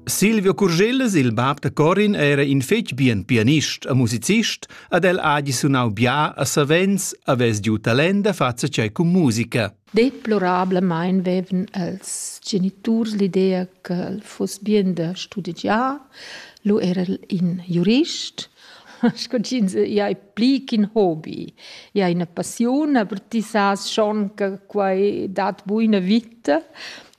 Silvio Curgellas, il bab da Corin, era in fetg bien pianist e musicist ed el ha gi sunau bia a savens havess giu talent da far tschei cun musica. Deplorablemein vevan els geniturs l'idea che el fuss bien da studigiar. Lu era el in jurist sco ch'ins ia è pli ch'in hobby. Ia è ina passiun, aber ti sas schon che quai dat buina vita.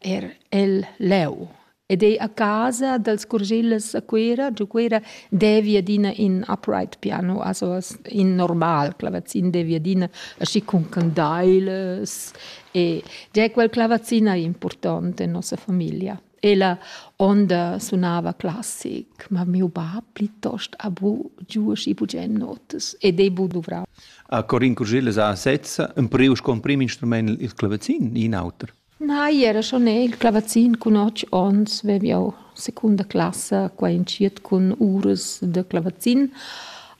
er el leu ed ei a casa dals Curgillas a Cuera, giu Cuera devi adina in upright piano, also in normal clavazin devi adina aschi cun candailas e già quel clavazin ei important en nossa famiglia. Ella onda sunava classic, ma miu bab plitost ha bu giu aschi bugen notas ed ei bu duvrau. A Corin Curgillas ha sezza empriu sco emprim instrument il clavazin, in auter. Nei, era schon el clavazin cun otg onns vev jau secunda classa qua entschiet cun uras da clavazin,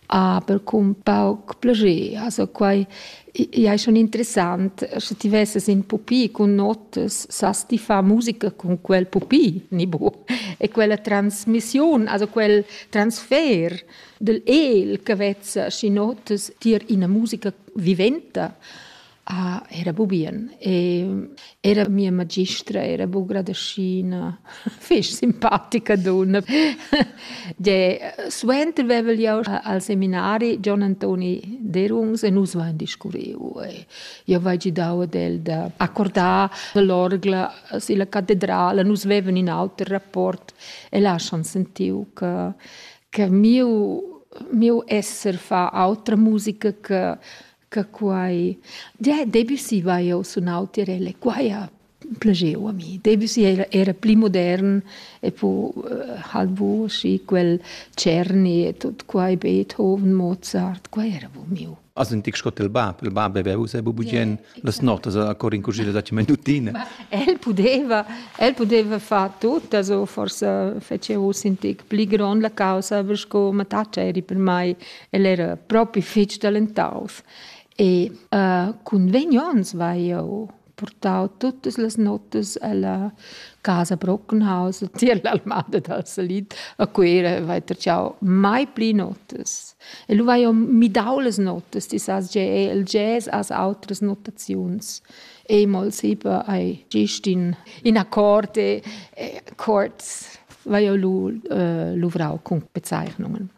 aber cun pauc plascher. Also quai ei schon interessant, sche ti vesses in pupi cun notas, sas ti far musica cun quel pupi, ni bu? E quella transmissiun, also quel transfer dal el che vezza schi notas tier ina musica viventa, Ah, era bu bien. E era mia magistra era bu gradaschina, fich simpatica dunna. Gie, suenter vevel jau al seminari Gian Antoni Derungs e nus vain discurriu e jau vai gidau ad el da accordar l'orgla silla catedrala. Nus vevan in auter rapport e là schon sentiu che che miu miu esser fa autra musica che che quai Debussy va eu sunau tirelle quai ha plageu a mi Debussy era, era pli modern e po uh, halbo schi quel Cerni e tot quai Beethoven Mozart quai era bu miu As in tic scott il bab, il bab aveva usa bubugen yeah, las notas a cor in cucina da minutina. El pudeva, el pudeva far tutto, also forse fece us in tic pli grond la causa, per sco mataccia eri per mai El era propi fetg talentaus e uh, cun vegn onns vai eu portau tuttas las notas alla casa Brockenhaus e tier l'almada dal salit a Cuera vai tracciau mai pli notas. E lu vai eu midau las notas, ti sas ge el jazz as outras notaziuns. E mol sipa ai gist in, in akkord e, e chords vai eu lu uh, luvrau cun bezeichnungen.